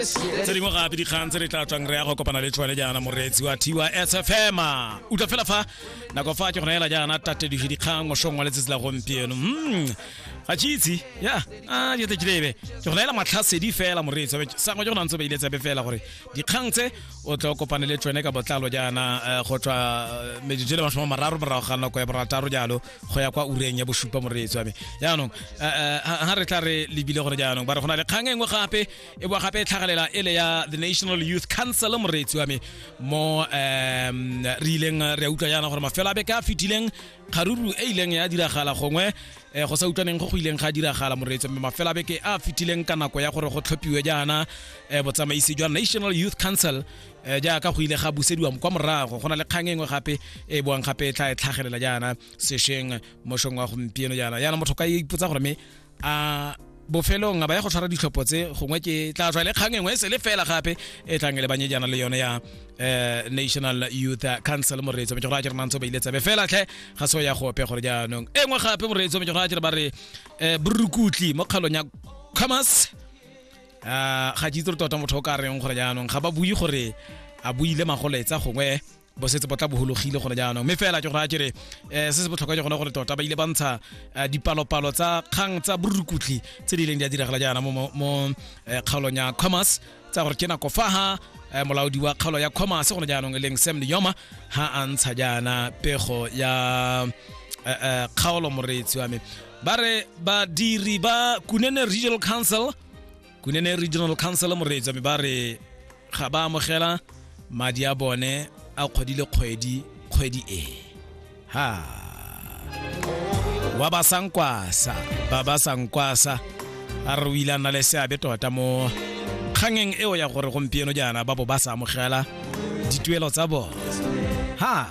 tse dingwe gape dikgang tse re tla tswang re ya go kopana le tshwane jaana moreetsi wa tiwa sfm utlwa fela fa nako fa ke go naela jaana tatediso dikgang mosong wa letsatsi la gompieno Mm, ga ke itse ya a jete kilebe ke go naela matlhasedi fela moreetsi sangwe ke go nantse o beile tsebe fela gore dikgang tse o tla o kopane le tshwane ka botlalo jaana eh, go tswa eh, metsotso e le masome a mararo morago ga nako ya borataro jalo go ya kwa ureng ya bosupa moreetsi wa me jaanong eh, eh, ha ha re tla re lebile gore jaanong ba re go na le kgang e nngwe gape e boa gape e tlhagalela e le ya the national youth council moreetsi wa me mo um re ileng re a utlwa jaana gore mafelo a beke a fetileng kgaruru e ileng ya diragala gongwe um go sa utlwaneng go go ileng ga diragala moreetsi mme mafelo a beke a fetileng ka nako ya gore go tlhophiwe jaana um botsamaisi jwa national youth council um jaaka go ile ga busediwa kwa morago go na le kgang engwe gape e boang gape e tla e tlhagelela jaana sešweng mošong wa gompieno jaana jaana motho ka ipotsa gore me a bofelong a ba ya go tshwara ditlhopho tse gongwe ke tla tswa le kgang engwe e sele fela gape e tlang e le banyejana le yone ya eh, national youth council moreetso metse gore a kere nantse ba ile tsebe fela tlhe ga se o ya gope gore jaanong e nngwe gape moreetso metse gore a kere ba re eh, borukutli mo kgalong ya commerce Ah, ga ke itse gore tota motho o ka reng gore jaanong ga ba bue gore a buile magoletsa gongwe bo setse bo tla bohologile gone jaanong mme fela ke gore a kere um se se botlhokwa ke gone gore tota ba ile ba ntsha eh, dipalopalo tsa kgang tsa borukutlhi tse di ileng di a diragala jaana mo eh, kgaolong ya commerce tsa gore ke nako fa ha eh, molaodi wa kgaolo ya commerce gone jaanong e leng sam leoma ha a ntsha jaana pego ya kgaolo moreetsi wa me ba re badiri ba kunene regional council kunene regional council moreetsa me ba re ga ba amogela madi a bone a kgwedi le kgwedi kgwedi e ha wa ba sankwasa ba ba sankwasa a re o ile a nna le seabe tota mo kgangeng eo ya gore gompieno jaana ba bo ba sa amogela dituelo tsa bone ha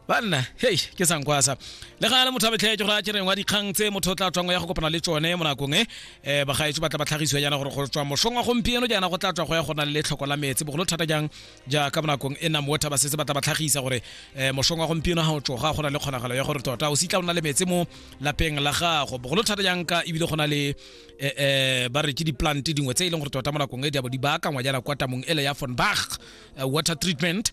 banna hei ke sankwasa le ga le motho a betlhetse gore a kereng wa dikgang tse motho o tla tswang ya go kopana le tsone mo nakong e um bagaetso ba tla ba tlhagisiwa jaana gore go tswa mosong wa gompieno jaana go tla tswa go ya go na le tlhoko la metse bogolo thata jang jaaka mo nakong e nang water ba setse ba tla ba tlhagisa gore um mosong wa gompieno ga o tsoga go na le kgonagalo ya gore tota o se tla o na le metse mo lapeng la gago bogolo thata jang ka ebile go na le um ba re ke di-plant dingwe tse e leng gore tota mo nakong e di abo di baakangwa jaana kwa tamong ele ya fonbach water treatment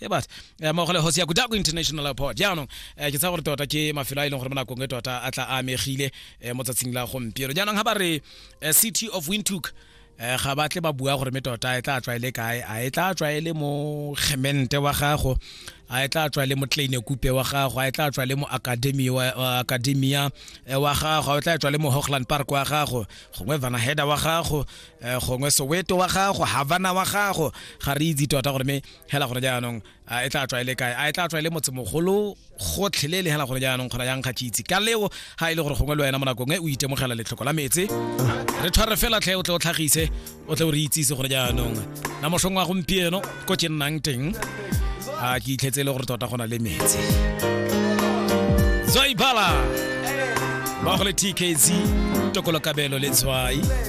e bat eh, mo gole hosi ya kudaku international airport jaanong eh, ke tsa gore tota ke mafelo a e leng gore mo nakong e tota a tla a amegile eh, mo tsatsing la gompieno jaanong ga ba re eh, city of windhoek eh, ga ba tle ba bua gore me tota e tla tswaele kae a e tla tswaele mo gemente wa gago a e tla tswaele mo tlane kupe wa gago a e tla tswaele mo academy wa wa- academia eh, wa gago a e tla tswaele mo hochland park wa gago gongwe vanaheda wa gago eh, gongwe soweto wa gago havana wa gago ga re itse tota gore me hela gore jaanong a e tla tswa e le kae a e tla tswa e le motsemogolo gotlhelele hela gore jaanong kgona yang kgatšitse ka leo ga e le gore gongwe le wena mo nakong e o itemogela letlhoko la metse re tshware fela tlhe o tle o tlhagise o tle o re itsise gore jaanong na mosong wa gompieno ko ke nnang teng a ke itlhetse e le gore tota go na le metse zoibala ba go le tkz tokolo kabelo le tshwai